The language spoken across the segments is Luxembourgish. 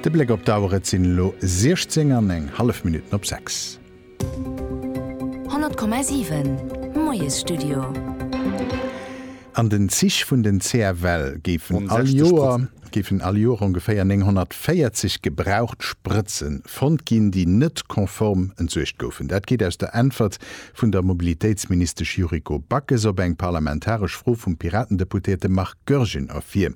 De Bléck op d'Auer, et sinn elo 16 an eng hallef Minutten op 6. 100,7, Moiesstudio. An den Zich vun den CFL géifen all Joer géifen all Joer ongeféier 940 gebraucht Sprëtzen fonnt ginn, déi net konform entsuergt goufen. Dat geet aus der Äntwert vun der Mobilitéitsministesch Yuriko Backes op eng parlamentaresch Fro vum Piratendeputéierte Marc Goergen ervir.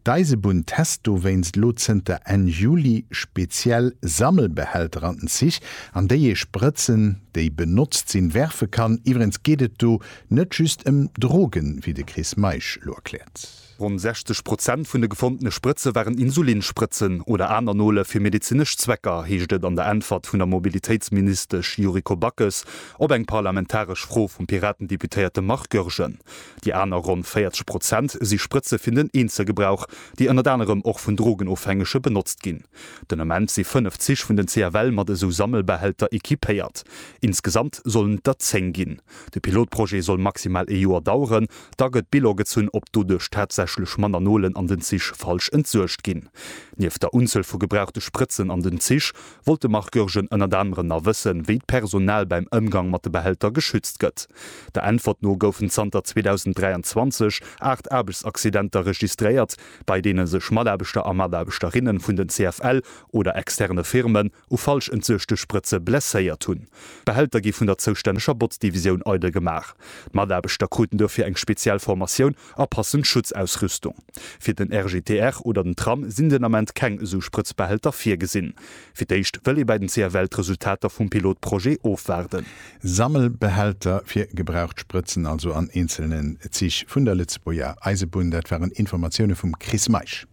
D'Eisebunn test dowéinst elo zënter Enn Juli speziell Sammelbehälter an den Zich, an déi ee Sprëtzen, déi benotzt sinn, werfe kann. Iwwerens geet et do net just ëm Drogen, wéi de Chris Meisch elo erkläert. Ronn 60 Prozent vun de gefondene Sprëtze waren Insulinsprëtzen oder aner Nole fir medezinesch Zwecker, heescht et an der Äntwert vun der Mobilitéitsministesch Yuriko Backes op eng parlamentaresch Fro vum Piraten-Deputéierte Marc Goergen. Déi aner ronn 40 Prozent si Sprëtze fir den Eenzelgebrauch, déi ënnert anerem och vun Drogenofhängege benotzt ginn. Den Ament si fënnef Zich vun den CFL mat esou Sammelbehälter equipéiert. Insgesamt sollen et der zéng ginn. De Pilotprojet soll maximal ee Joer daueren, da gëtt Bilan gezunn, ob doduerch tatsächlech manner Nolen an den Zich falsch entsuergt ginn. Nieft der Unzuel vu gebrauchte Sprëtzen an den Zich, wollt de Marc Goergen ënnert anerem nach wëssen, wéi d'Personal beim Ëmgang mat de Behälter geschützt gëtt. Der Äntwert no goufen zanter 2023 aacht Aarbechtsaccidenter registréiert, bei deene sech Mataarbechter a Mataarbechterinnen vun den CFL oder externe Firmen, u falsch entsuechte Sprëtze blesséiert hunn. D'Behälter gi vun der zoustänneger Botzdivisioun eidel gemaach. D'Mataarbechter kruten dofir eng speziell Formatioun a passend Schutzausrüstung. Fir den RGTR oder den Tram sinn den Ament keng esou Sprëtzbehälter virgesinn. Fir d'éischt wëll ee bäi den CFL d'Resultater vum Pilotprojet ofwaarden. Sammelbehälter fir gebraucht Sprëtzen also an eenzelnen Zich vun der Lëtzebuerger Eisebunn. Dat waren Informatioune vum Chris Meisch.